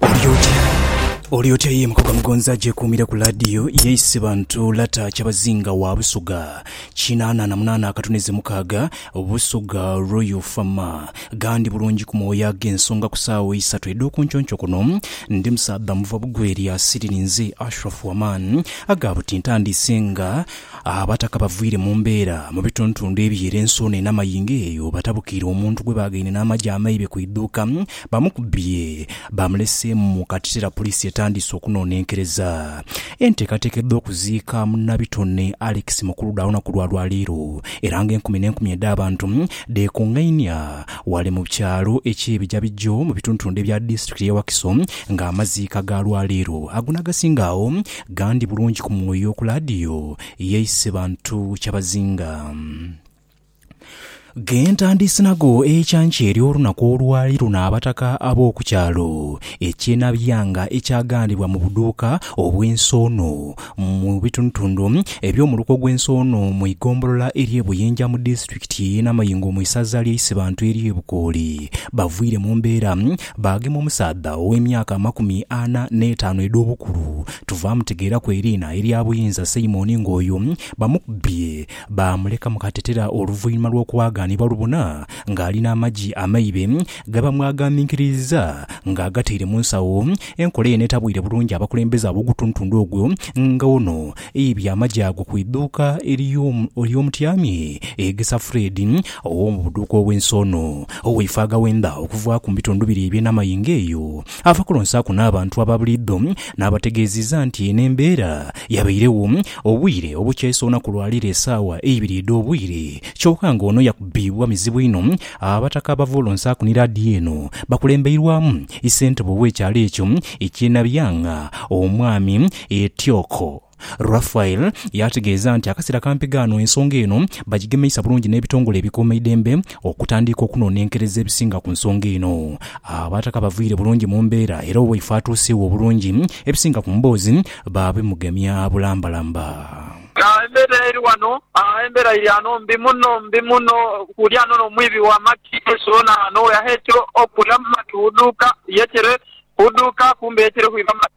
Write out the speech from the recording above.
Oli otya? Oli otya ye mukoga mugonzi agyekuumire ku laadiyo ye Isibantu lata kyabazinga wa Busoga kinaana na munaana akatuneze mukaaga Busoga Royal Fama gandi bulungi ku mwoyo ag'ensonga ku saawa eisatu edh'okunconco kuno ndi musaadha muva bugweri asiriri nze Ashraf Waman aga buti ntandiise nga Abataka bavwire mu mbeera mu bituntundu eby'ere ensuuna en'amayingo eyo batabukiire omuntu gwe baagaine n'amagye amaibe ku idhuuka Bamukubye baamuleseemu mu kateteera poliisi etandiise okunonenkereza enteekateeka edh'okuziika munabitone Alex Mukuluda olunaku lwa lwaleero era nga enkumi n'enkumi edh'abantu dheekungainia wale mu kyalo eky'e Bijabijjo mu bitundutundu ebya disitulikiti y'e Wakiso nga amaziika ga lwaleero ago n'agasinga agho gandi bulungi ku mwoyo ku laadiyo y'e Isebantu Kyabazinga. Ghentandiise nago ekyankya ery'olunaku olwali luna abataka ab'oku kyalo ekye Nabyanga ekyaghandiibwa mu buduuka obw'Ensoono mu bitundutundu eby'omu luko gw'Ensoono mu igombolola ery'e Buyinja mu disitulikiti y'e Namayingo mu isaza ly'e Isibantu ery'e Bukooli. Bavwiire mu mbeera baagema omusaadha ow'emyaka amakumi ana n'etaanu edh'obukulu Tuvaamutegeeraku eriina erya Buyinza Simon ng'oyo bamukubbye Baamuleka mu katetera oluvainhuma lw'okuwaagaanibwa lubona ng'ali n'amagi amaibe ge bamwagaaminkiririzza ng'agataire mu nsawo. Enkola eno etabwire bulungi abakulembeze ab'ogutuntundu ogwo nga ono aibye amagi ago ku idhuuka ery'omutyami Egesa Fred ow'omu buduuka obw'ensi ono ow'eifo aghawenda okuvaaku mu bitundu bire eby'e Namayingo eyo Ava kulonsaaku n'abantu aba buliidho n'abategeeziza nti n'embeera yabairegho obwire obukyayisa olunaku lwa leero esaawa eibiri edh'obwire kyoka nga ono yakubibwa mizibu inho. Abataka abava olonsaaku ni laadiyo eno bakulembeirwamu Issentebe ow'ekyalo ekyo ekye Nabyang'a, Omwami Etioko, Raphael yaategeeza nti akasera kampi ghaano ensonga eno bagigemeisa bulungi n'ebitongole ebikuuma eidembe okutandiika okunonenkereza ebisinga ku nsonga eno. Abataka bavaire bulungi mu mbeera era owaifo atuuseegho obulungi ebisinga ku mboozi baabimugemya bulambalamba. Embeera eri ghano, embeera iri ghano mbi muno, mbi muno. Kuli ghano n'omwibi wa maki ensolo naano weyaheekera okula mu maki hudhuuka yeetere, hudhuuka kumbe yeetere hwiba maki.